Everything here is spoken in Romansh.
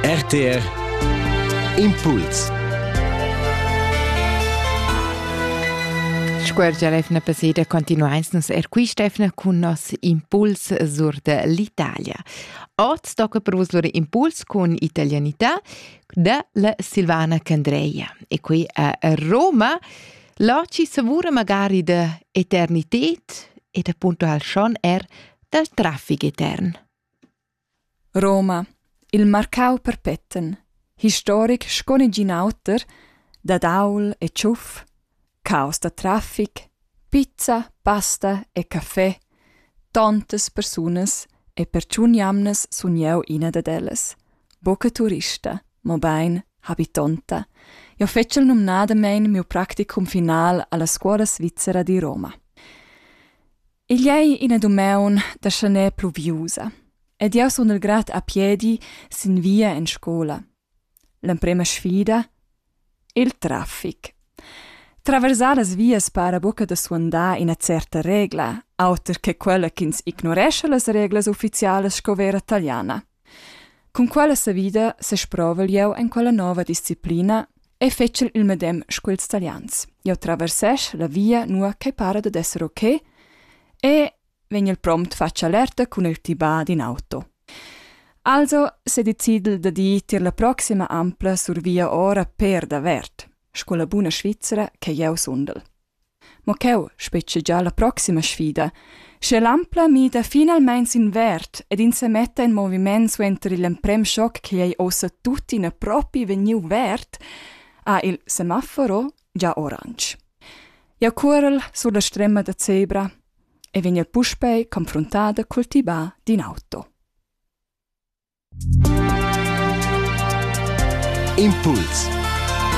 RTR Impuls Scuergia l'efna paseda continuains nos er quist'efna cun nos impuls sur de l'Italia. Oz tocca per vos lur impuls cun italianità de la Silvana Candreia. E qui a Roma la ci savura magari de eternitet e de punto al schon er del traffic etern. Roma, il marcau perpeten, historic sco negin auter, dad aul e tschuf, caos da traffic, pizza, pasta e caffè, tontas persunas e per tschun jamnas sun jeu ina dad ellas, buca turista, mobein habitonta. Jeu fetschel numnadamein miu practicum final alla scuola svizzera di Roma. Igl ei ina dumeun da schaner pluviusa ed jeu sun il grad a piedi sin via en scola. L'emprema sfida? Il traffic. Traversar las vias para buca da suandar ina certa regla, auter che quella ch'ins ignorescha las reglas ufficialas sco vera taliana. Cun quella savida sesprovel jeu en quella nova disciplina e fetschel il medem sco ils Talians. Jeu traversesch la via nua ch'ei para dad esser ok e vegnel prompt fatg alerta cun il tibà d'in auto. Also sedecidel da dir tier la proxima ampla survia ora per davert, sco la buna Svizra che jeu sundel. mo cheu spetgegia la proxima sfida, sche l'Ampla mida finalmein sin verd ed ins semetta in moviment suenter igl emprem schoc ch'igl ei ossa tuttina propi vegniu verd, ha il semaforo gia oransch. Jau cuorel sur la strema da zebra e vegn puspei confruntada cul tibà d'in auto. Impuls